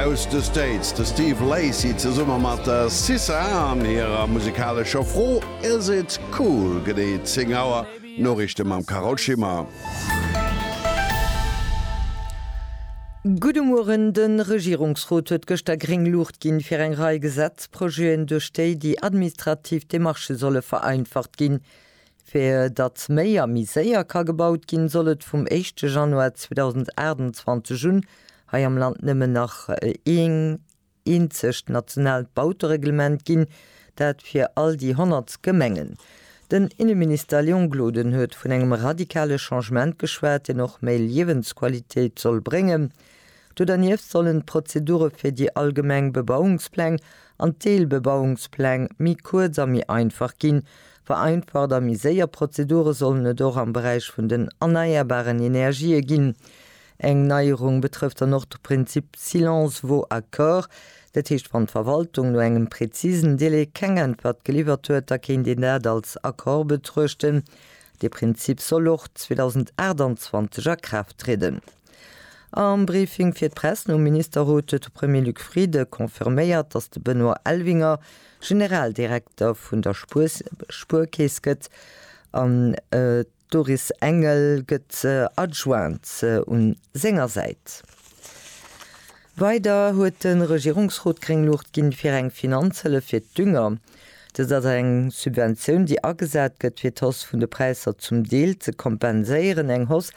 Aus de States de Steve Lacy zesumme mat der Sissa an hirer musikalescher Fro Is It Cool? Genee 10 Auer, Noriichte mam Carole Schimmer. Gudde Mueren, De Regierungsrot huet gëschter gréng Luucht ginn, fir eng Rei Gesetzprojeten, duerch déi déi administrativ Demarchë solle vereinfacht ginn, Fir datt méi a méi séier ka gebaut ginn, soll et vum éischte Januar 2028 un hei am Land nëmmen nach een eenzegt nationaalt Bautereglement ginn, dat fir all déi 100 Gemengen. Den Inneminister Léon Gloden huet vun engem radikale Changement geschwat, deen och méi Liewensqualitéit soll bréngen. Do dernieft sollen d'Prozedure fir déi allgemeng Bebauungspläng an d'Deelbebauungspläng méi kuerz a méi einfach ginn. Vereinfacht a méi séier Prozedure sollen et och am Beräich vun den erneierbaren Energië ginn. Eng Neierung betrëfft dann och de Prinzip silence vaut accord. Dat heescht, wann d'Verwaltung no engem prezisen Delai keng Äntwert geliwwert huet, da kéint een dat als Accord betruechten. Dee Prinzip soll och 2028 a Kraaft trieden. Am Briefing fir d'Press nom Ministerrot huet de Premier Luc Frieden confirméiert, datt de Benoît Elvinger Generaldirekter vun der Spuerkeess gëtt an d'Doris Engel gëtt Adjointe un senger Säit. Weider huet de Regierungsrot gréng Luucht ginn, fir eng Finanzhëllef fir d'Dünger. Dëst ass eng Subventioun, déi agesat gëtt, fir d'Hausse vun de Präisser zum Deel ze kompenséieren, eng Hausse,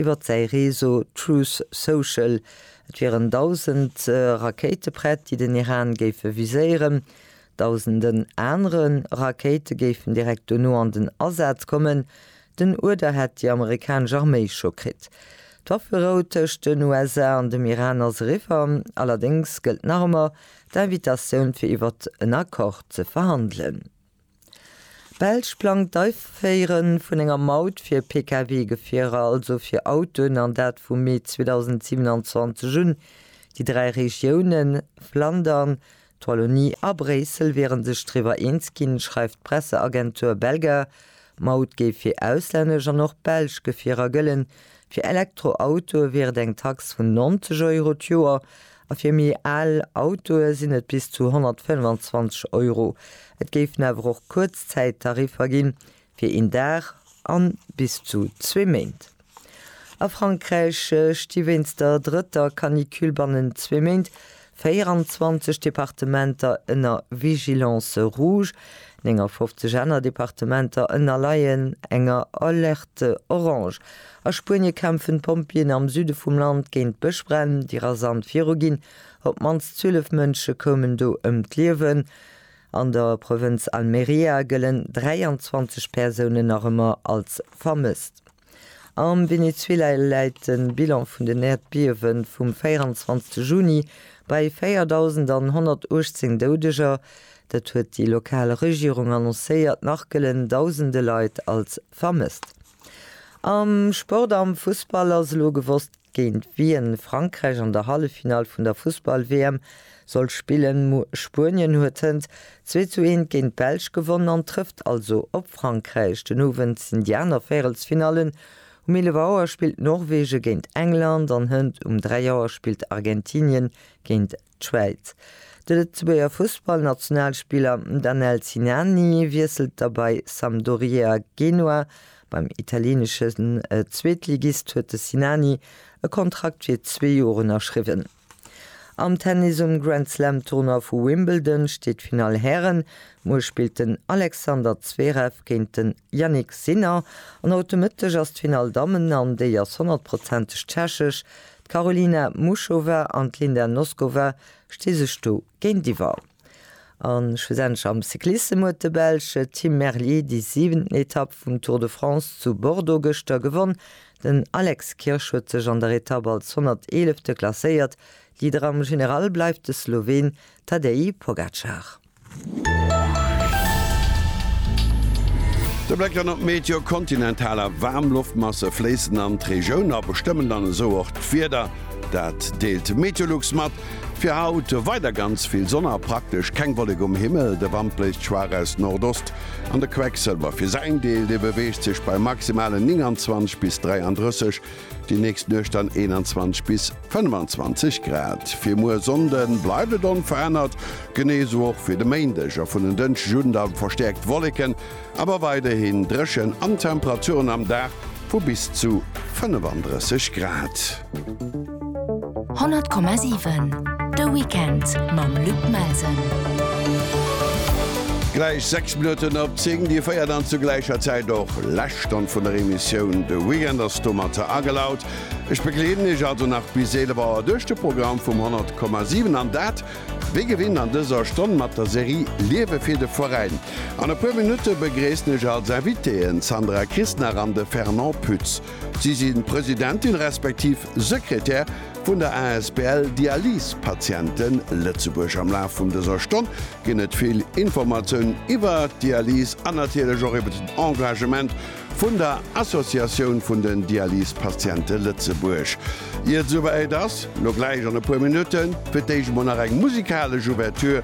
Iwwert säi Réseau Truth Social, et wieren dausend Rakéite prett, déi den Iran géife viséieren. Dausenden anere Rakéite géifen direkt dono an den Asaz kommen. Den Uerder hätt déi amerikanesch Arméi scho kritt. D'Wafferou tëscht den USA an dem Iran ass eriwwer. Allerdéngs gëllt nach ëmmer d'Invitatioun fir iwwert en Accord ze verhandelen. D'Belsch plangt d'Aiféiere vun enger Maut fir Pkw-Gefierer, also fir Autoen, an dat vu Mee 2027 un. Déi dräi Regiounen, Flandern, d'Wallonie a Bréissel, wiere sech driwwer eens ginn, schreift d'Presseagentur Belga. D'Maut géif fir auslännesch an och belsch Gefierer gëllen. Fir Elektroautoe wier et eng Tax vun 90 Euro d'Joer A fir méi al Autoe sinn et bis zu 125 Euro. Et géifen awer och Kuerzzäittariffer ginn, fir een Dag a bis zu zwee Méint. A Frankräich sti wéinst der drëtter Canicule bannent zwee Méint 24 Departementer ënner Vigilance rouge, 59 aner Departementer ënnerleien enger Alerte orange. A Spuenie kämpfen d'Pompjeeën am Süde vum Land géint Bëschbränn, déi rasant viruginn. Op d'mannst 12 Mënsche koumen do ëm d'Liewen. An der Provënz Almeria gëllen 23 Persounen nach ëmmer als vermësst. Am Venezuela läit de Bilan vun den Äerdbiewe vum 24 Juni bei 4.118 Doudeger. Dat huet déi lokal Regierung annoncéiert. Nach gëllen dausende Leit als vermësst. Am Sport, Am Fussball ass elo gewosst, géint wien Frankräich an der Halleffinall vun der Fussball-WM soll spillen. Spuenien huet hënt zwee zu eent géint d'Belsch gewonnen an trëfft also op Frankräich. Den Owend sinn déi aner Véirelsfinallen, Um 11 Auer spillt Norwegen géint England an hënt um 3 Auer spillt Argentinien géint D'Schwäiz. De Lëtzebuerger Fussballnationalspiller Danel Sinani wiesselt da bei Sampdoria Genua. Beim italieneschen Zweetligist huet de Sinani e Kontrakt fir zwee Joer ënnerschriwwen. Am Tennis um Grand Slam Tournoi vu Wimbledon steet d'Finall Hären. Muer spillt den Alexander Zverev géint den Jannik Sinner an haut de Mëtteg ass d'Finall Dammen an déi ass honnertprozenteg tschechesch. D'Karolina Muchova an d'Linda Noskova sti sech do géintiwwer. A schlussendlech am Cyclissem huet de Belsch Tim Merlier déi siwenten Etapp vum Tour de France zu Bordeaux gëschter gewonn. Den Alex Kirsch huet sech an der Etapp als 111. klasséiert. Leader am General bleift de Sloween Tadej Pogacar. De Bléck dann op d'Meteo, Kontinentaler Waarmloftmasse fléissen an d'Regioun a bestëmmen dann esou och d'Wieder. Dat deelt de Meteolux mat. Fir haut weider ganz vill Sonn a praktesch keng Wollek um Himmel. De Wand bléist schwaach aus Nordost an de Quecksëlwer fir säin Deel, dee beweegt sech bei maximalen 29 bis 33 Déi nächst Nuecht dann 21 bis 25 Grad. Fir muer Sonnde bleift et onverännert, genee esou och fir de Méindeg a vun en Dënschdeg un da verstäerkt Wolleken, awer weiderhin dréchen an Temperaturen am Dag vu bis zu 35 Grad. 100,7 De Weekend mam Luc Melsen. Gläich 6 Minutten op 10, Dir féiert an zu gläicher Zäit och lescht Stonn vun der Emissioun. De Weekend ass domatter agelaut. Ech begleeden Iech also nach bis 11 Auer duerch de Programm vum 100,7 an dat wéi gewinnt an dëser Stonn mat der Serie Liewe fir de Veräin. An e puer Minutte begréissen ech als Invitéeën d'Sandra Christnach an de Fernand Pütz. Si sinn Presidentin respektiv Sekretär vun der asbl Dialysepatienten Lëtzebuerg. Am Laf vun dëser Stonn ginn et vill Informatiounen iwwer d'Dialyse an natierlech och iwwer den Engagement vun der Associatioun vun den Dialysepatiente Lëtzebuerg. Ier et souwäit ass, lo gläich an e puer Minutten, fir d'éischt emol nach eng musikalesch Ouverture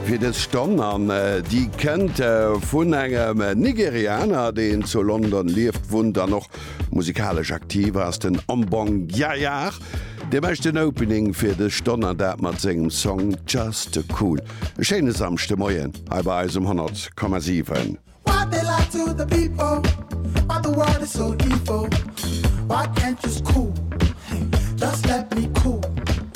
fir dës Stonn. An déi kënnt vun engem Nigerianer, deen zu London lieft, wunnt an och Musikalesch aktiv ass den Ambong Yayar. Dee mécht den Opening fir dës Stonn an dat mat sengem Song Just Too Cool. E schéine Samschde Moien hei bei eis um 100,7.